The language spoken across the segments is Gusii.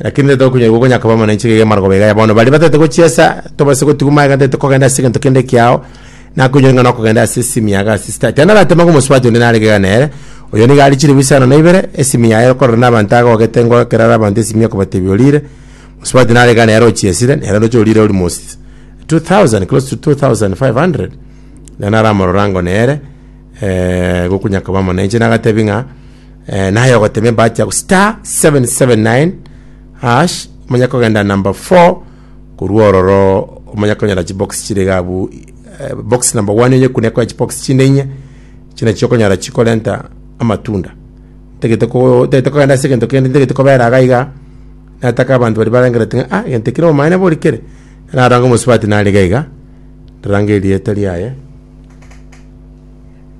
Lakini nigo tokonyora igwa konyakaba mono enchera eye y'amarogobera iga ya bono. Baria bataete gochiesa, tobase gotigwa magega, ntaete kogenda ase egento kende kiao, nakonyora ng'a nokogenda ase esimi yago ase sitati. Yaani aratema ng'a omosubati onde narenge iga nere, oyo nigo are chilifu isano na ibere, esimi yaye ekororwa nabanto agogete ngo ekero are abanto esimi ekobatebia orire, mosubati narenge iga nere ochiesire, nere roche orire ori mos 2000, close to 2500. Naende aramorora ango nere, gokonyakaba mono enchera nagatebia ng'a. Eh, naye ogotemia bacha ku star 779 hash omanya kogenda number 4 korwa ororo omanya konyora chibox chire gabu eh, box number 1 onye kune kwa chibox chinde inye chine chikonyora chikorenta amatunda tegete ko tegete kogenda ase gento kende tegete kobera agaiga nataka abantu bari barangera tinga ah gento kire omanyene bori kere naranga mosubati nari gaiga rangeria etari aye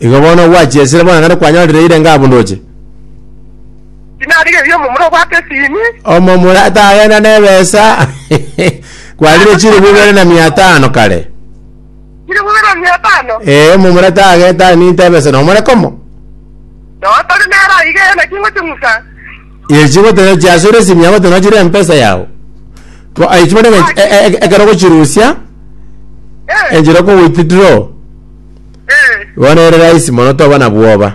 Igo bono ogwachesire bono ekero kwanyorire irenge abunduche. Tinarigereria omomura obwate esini. Omomura tagenda nebesa kwarire chilifu ibere na mia tano kare. Kiri bubera mia tano. Ee omomura tage taninte ebesa nomore komo. Noa tari nera iga ene kingochi ng'usa. Echi gotera chiasure simia gotera chire mpesa yao. Bo aichi bane ekero gochirusia. Eh. Enjiro ko withdraw. Eh, Bono ere rahisi mono toba na bwoba.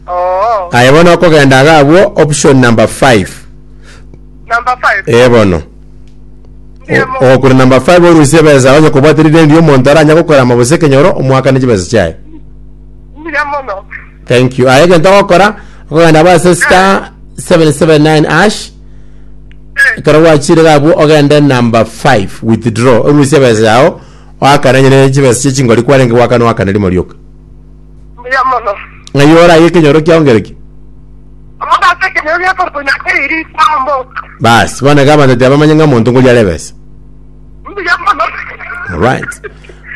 oo. Aye bono okogenda iga abwo option number 5. Number five. Ee bono. Ndiye mo- Ogokura number 5 orusie ebesa onye kobwate rideni ria omonto aranya gokora ama gose ekenyoro omoakane chibesa chiaye. Ndiye mono. Thank you. Aye egento ogokora okogenda base star 779 ash Eh, ekero gwachire iga abwo ogende number 5 withdraw orusie ebesa yao Oakananyene chibesa chie chingori kwarenge goaka noakana rimo rioka. Mbuya mono. Ng'ai oraye ekenyoro kiao ngereki? Omonto ase ekenyoro gia korukonya ase iri kwamboka. Basi, bono iga abanto tibamanye ng'a omonto ngoria are ebesa. Mbuya mono. Alright.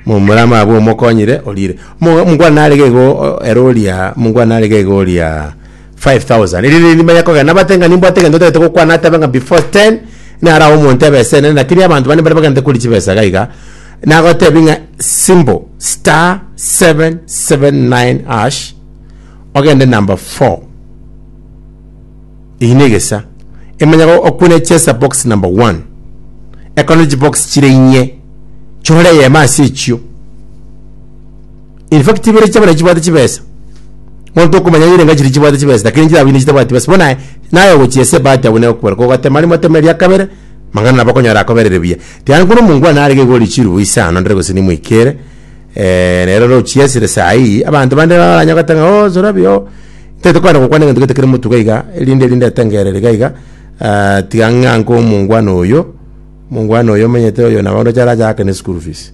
Momura amabwe omokonyire orire. Mo- Mungwana narege igo o- ere oria, mungwana narege igo oria 5,000 Erinde nindi manye kogenda nabate ng'a nimbwate egento otagete gokwana atebe ng'a before 10 nare awo omonto ebe ase enene lakini abanto bande mbare bagende kori chibesa iga iga nagotebi ng'a symbol star 779 hash ogende number 4 eyio na egesa emanye go- okune chesa box number 1 ekone chibox chire inye chore eyemo ase echio In fact chibere chiabo nachi chibwate chibesa. Monto okomanya yire ngachi ri chibwate chibesa lakini chirabo ine chitabwati besa. Bona naye ogochia ese bahati abune okwera ko gatema rimo ateme ria kabere mang'ana nabo okonyora akoberere buya. Tiga nkono omongwana arege igo ori chirubu ise ano ndire gose nimwikere eh nero rochia esire saa hii abanto bande baranya goteba ng'a oh Zorabi oh ntaete kwenda gokwana egento gete kere motuga iga erinde erinde etengerere iga iga ah tiga ng'a nko omongwana oyo, omongwana oyo omenyete oyo nabo ndoche arache aakane school fees.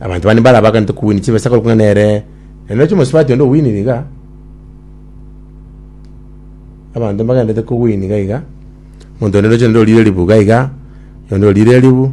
Abanto bande mbare abaganete kowini chibesa korokwa ng'a nere nere noche omosubati onde owinire iga. Abanto mbagenderete kowini iga iga. Omonto onde noche nende orire ribu iga iga, onde orire ribu.